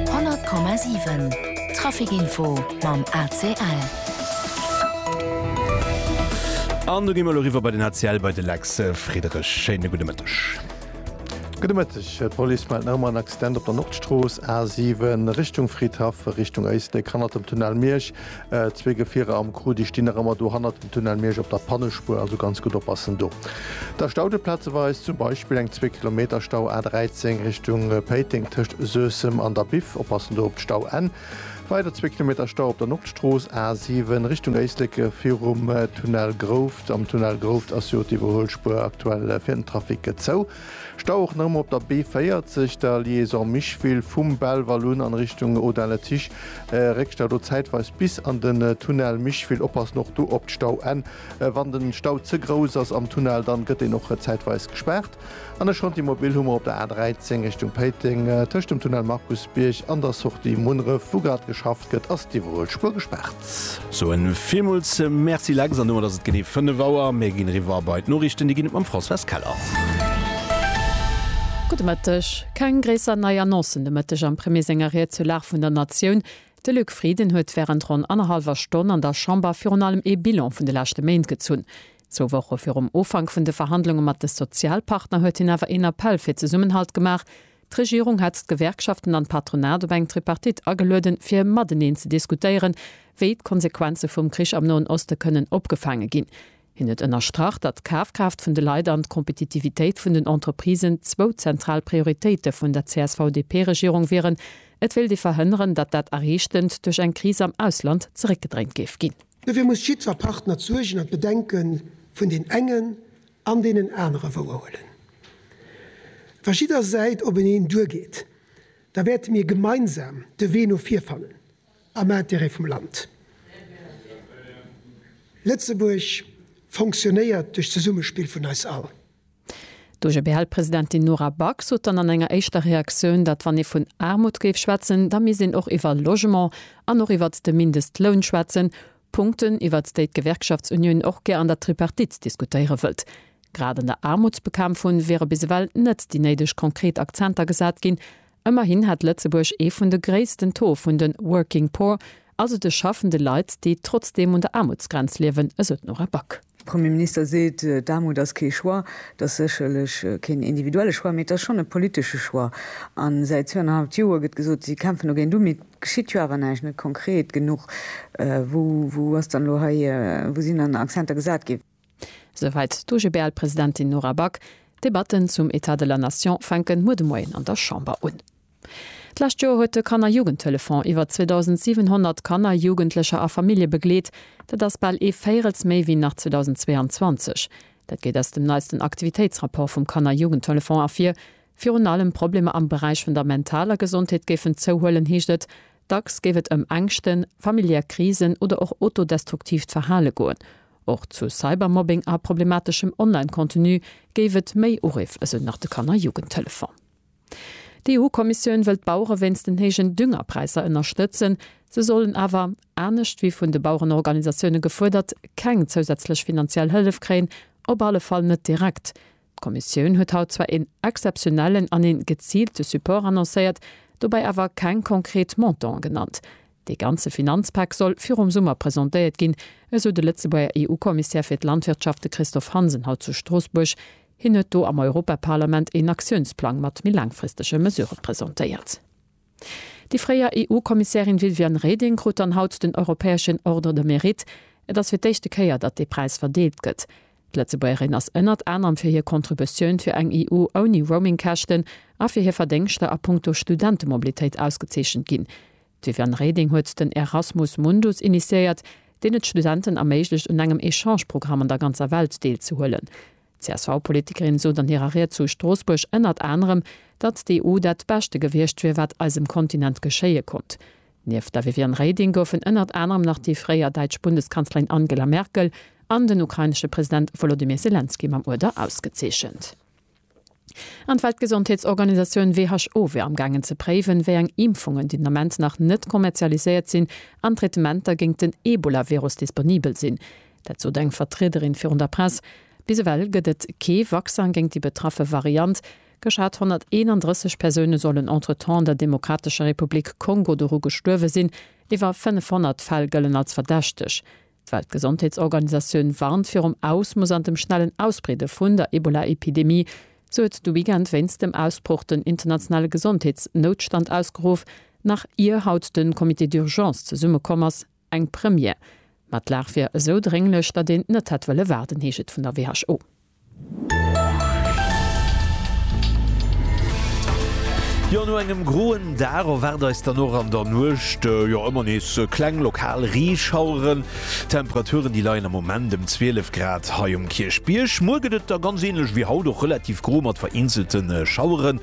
100,7 Trafikinfo mam ACL. An do gi mer elo eriwwer bei den ACL, bei de Lex Friederich. Schéine gudde Mëtteg. Gudde Mëtteg. D'Police mellt nach ëmmer en Accident op der Nordstrooss, A7, Richtung Fridhaff, Richtung Éislek, hannert dem Tunnel Miersch. Zwee Gefierer am Crew, déi stinn nach ëmmer do hannert dem Tunnel Miersch op der Pannespuer, also ganz gutt oppassen do. Da staut et plazeweis, zum Beispill eng zwee Kilometer Stau A 13 Richtung Péiteng tëscht Suessem an der Biff, oppassen do op d'Stauenn. Weider zwee Kilometer Stau op der Nordstrooss A 7 Richtung Éislek virum Tunnel Grouft. Am Tunnel Grouft ass jo d'Iwwerhuelspuer aktuell fir den Trafic zou. Stau och nach ëmmer op der B40, der Liaison Micheville, vum Belval un an Richtung Audun-le-Tiche. Réckstau do zäitweis bis an den Tunnel Micheville. Oppassen och do op d'Stauenn. Wann den Stau ze grouss ass am Tunnel, dann gëtt deen och zäitweis gespaart. An de Chantier Mobile hu mer op der A13 Richtung Péiteng, tëscht dem Tunnel Markusbierg an der Sortie Munneref, wou grad geschafft gëtt, ass déi iwwerhoelt Spuer gespaart. Mat. Soen villmools Merci Lex, an domat ass et genee 5 Auer. Mir ginn eriwwer bei d'Noriichten, déi ginn et mam Françoise Keller. Gudde Mëtteg. Keng gréisser nei Annoncen de Mëtteg am Premier senger Ried zur Lag vun der Natioun. De Luc Frieden huet wärend ronn annerhallwer Stonn an der Chamber virun allem ee Bilan vun de leschte Méint gezunn. Zwou Woche virum Ufank vun de Verhandlunge mat de Sozialpartner huet hien awer een Appell fir Zesummenhalt gemaach. D'Regierung hat d'Gewerkschaften an d'Patronat op eng Tripartite agelueden, fir mateneen ze diskutéieren, wéi d'Konsequenze vum Krich am Noen Oste kënnen opgefaange ginn. Hien huet ënnerstrach, datt d'Kafkraaft vun de Leit an d'Kompetitivitéit vun den Entreprisen zwou zentral Prioritéite vun der CSV-DP-Regierung wieren. Et wéilt ee verhënneren, datt dat Erreechtend duerch eng Kris am Ausland zeréckgedréint géif ginn. Dofir muss jiddwer Partner d'Suergen an d'Bedenke vun den engen An deenen anere wouer huelen. Wa jidder Säit op en een duer geet, da wäerte mir gemeinsam de Wee no vir fannen, am Intérêt vum Land. Lëtzebuerg fonctionnéiert duerch d'Zesummespill vun eis all. D'OGBL-Presidentin Nora Back sot dann an enger éischter Reaktioun, datt wann ee vun Aarmut géif schwätzen, da misst een och iwwer Logement an och iwwert de Mindestloun schwätzen, Punkten, iwwert déi d'Gewerkschaftsunioun och gär an der Tripartite diskutéiere wëllt. Grad an der Aarmutsbekämpfung wiere bis ewell net déi néideg konkret Akzenter gesat ginn. Ëmmerhin hätt Lëtzebuerg ee vun de gréissten Taux vun de working poor, also de schaffende Leit, déi trotzdeem un der Aarmutsgrenz liewen, esou d'Nora Back. De Premier Minister seet, d'Aarmut ass kee Choix. Et ass sécherlech keen individuelle Choix, mee et ass schonn e politesche Choix. A säit zwouennerhalft Joer gëtt gesot, si kämpfen dogéint u, mee et geschitt jo awer näischt, net konkret genuch. Wou ass dann elo hei, wou sinn dann Accenter gesat ginn? Souwäit d'OGBL-Presidentin Nora Back. D'Debatten zum État de la Nation fänken muer de Moien an der Chamber un. D'lescht Joer huet de Kanner-Jugendtelefon iwwer 2.700 Kanner, Jugendlecher a Famillje begleet. Dat ass bal ee Véirels méi wéi nach 2022. Dat geet aus dem neisten Aktivitéitsrapport vum Kanner-Jugendtelefon ervir. Virun allem Problemer am Beräich vun der mentaler Gesondheet géifen zouhuelen, heescht et. Dacks géif et ëm Ängschten, familiär Krisen oder och otodestruktiivt Verhale goen. Och zu Cybermobbing a problemateschem Online-Contenu géif et méi Uriff, esou nach de Kanner-Jugendtelefon. D'EU-Kommissioun wëll d'Bauere wéinst den héijen Düngerpräisser ënnerstëtzen. Se sollen awer, anescht wéi vun de Bauerenorganisatioune gefuerdert, keng zousätzlech finanziell Hëllef kréien, op alle Fall net direkt. D'Kommissioun huet haut zwar een exzeptionellen an ee geziilte Support annoncéiert, dobäi awer keng konkret Montanten genannt. Dee ganze Finanzpak soll virum Summer presentéiert ginn, esou de Lëtzebuerger EU-Kommissär fir d'Landwirtschaft, de Christophe Hansen, haut zu Stroossbuerg. Hien huet do am Europaparlament een Aktiounsplang mat méi laangfristege Mesurë presentéiert. Déi fréier EU-Kommissärin Viviane Reding krut dann haut den europäeschen Ordre de Mérite. Et ass fir d'éischte Kéier, datt dee Präis verdeelt gëtt. D'Lëtzebuergerin ass ënnert anerem fir hir Contributioun fir eng EU ouni Roaming-Käschten a fir hir Verdéngschter a Punkto Studentemoblitéit ausgezeechent ginn. D'Viviane Reding huet den Erasmus Mundus initiéiert, deen et Studenten erméiglecht un engem Echange-Programm an der ganzer Welt deelzehuelen. D'CSV-Politikerin sot an hirer Ried zu Stroossbuerg ënnert anerem, datt d'EU dat beschte gewiescht wier, wat eisem Kontinent geschéie konnt. Nieft der Viviane Reding goufen ënnert anerem nach déi fréier däitsch Bundeskanzlerin Angela Merkel an den ukrainesche President Wolodymyr Selenskyj mam Uerder ausgezeechent. An d'Weltgesondheetsorganisatioun who wier amgaangen ze préiwen, wéi eng Impfungen, déi den Ament nach net kommerzialiséiert sinn, an Traitementer géingt den Ebola-Virus disponibel sinn. Dat sot eng Vertriederin virun der Press. Bis ewell gëtt et kee Vaccin géingt déi betraffe Variant. Geschat 131 Persoune sollen entretemps an der Demokratescher Republik Kongo doru gestuerwe sinn. Iwwer 500 Fäll gëllen als verdächteg. D'Weltgesondheetsorganisatioun warnt virum Ausmooss an dem schnellen Ausbreede vun der Ebola-Epidemie. Se huet de Weekend wéinst dem Ausbroch den internationale Gesondheetsnoutstand ausgeruff, nach ier haut de Comité d'urgence zesummekomm ass. Eng Première. Ma d'Lag wier esou drénglech, datt een net hätt wëlle waarden, heescht et vun der WHO. Jo, no engem groen Dag erwaart eis dann och an der Nuecht, jo, ëmmer nees kleng lokal Reeschaueren. D'Temperaturen, déi leien am Moment ëm 12 Grad hei um Kierchbierg. Muer gëtt et da ganz änlech wéi haut, och relativ gro mat vereenzelte Schaueren.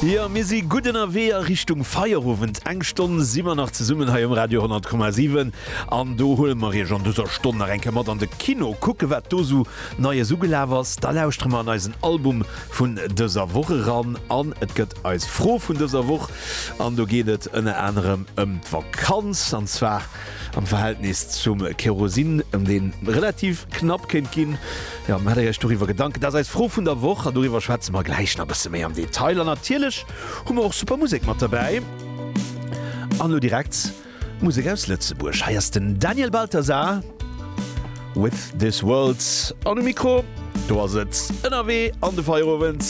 Jo, mir si gutt ënnerwee a Richtung Feierowend. Eng Stonn si mer nach zesummen hei um Radio 100,7 an do huele mer Iech an dëser Stonn nach eng Kéier mat an de Kino, kucke wat do esou Neies ugelaf ass. Da lauschtere mer an eisen Album vun dëser Woch eran an et gëtt eis Fro vun dëser Woch. An do geet et ënner anerem ëm d'Vakanz an zwar am Verhältnis zum Kerosin, ëm dee relativ knapp kéint ginn. Jo, maacht Iech doriwwer Gedanken, dat ass eis Fro vun der Woch an doriwwer schwätze mer gläich nach e bësse méi am Detail. An natierlech hu mer och super Musek mat derbäi. An elo direkt Musek aus Lëtzebuerg. Hei ass den Daniel Balthasar with This World an um Mikro, do ass et ënnerwee an de Feierowend.